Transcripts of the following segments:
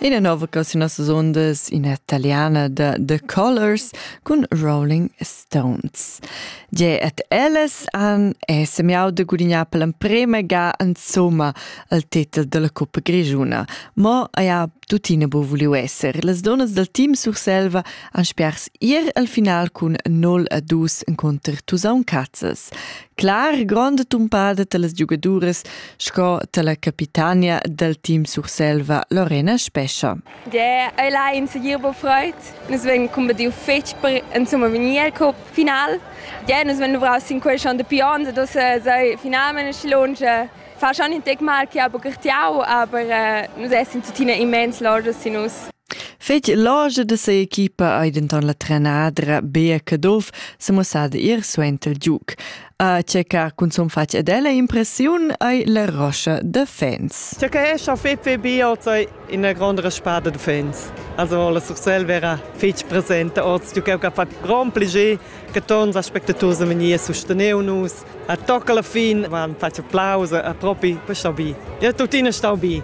Ina nova canzuna sondas in italiana da The Colors cun Rolling Stones. Ge et ellas han è semiau de gudignar per l'emprema ga insomma al titel della Coppa Grigiuna, ma ja tuttina bo vuliu esser. Las donnas del team Surselva han spers ir al final cun 0 a 2 incontr Tusaun Cazzas. clar gronda tumpada talas giugaduras sco tala capitania dal team Surselva Lorena Spescha. Yeah, ei là in segir bo freud. Nus vegn combatiu fetg per insomma vegnir al cup final. Yeah, nus vegn duvraus sin quei schon de pion, da sei finalment schlonge. Fa schon in tec mal che ha bucatiau, aber äh, nus essen tuttina immens logisch sin us. Fetg logia da sia equipa ei denton la trenadra Bea Caduff semussada ir suenter il giug. A checar cunzun fatg ed ella impressiun ei la roscha da fans. Checa è schon fetg fetg bio sei ina gronda spada da fans. Also la Sursel era fetg presente oz, giu che ha fatto grand plaisir che tons aspectators e menier susteneu nus. A tocca la fin van fatg applaus a propi, questo bi. Ja tuttina stau bi.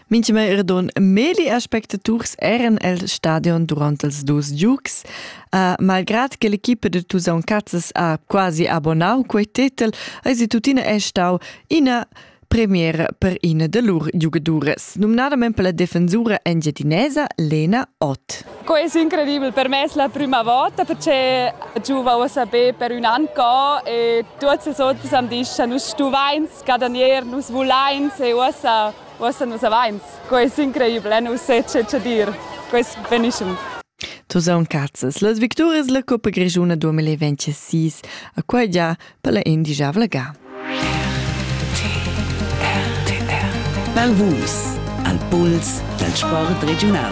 Mintgimai era don Meli aspectaturs eran el stadion durant els dus giugs. Uh, malgrad che l'equipa da Tusaun Cazzas ha quasi abonnau quei tetel, eisi tuttina è stau ina premiera per ina da lur giugaduras, numnadament per la defensura engiadinesa Lena Ott. Co è incredibile per me la prima volta perché giù va a sapere per un anno e tutti sono disciamo, stuvains scadanier, nus vulains e uossa, uossa nus avains. Quai es increibel, eh? nus se che che dir. Quest benischem. Tu zauncazzas. Las victorias la Coppa Grischuna 2026 a quai già per la indigiavla ga. Mal Vus al puls dal sport regiunal.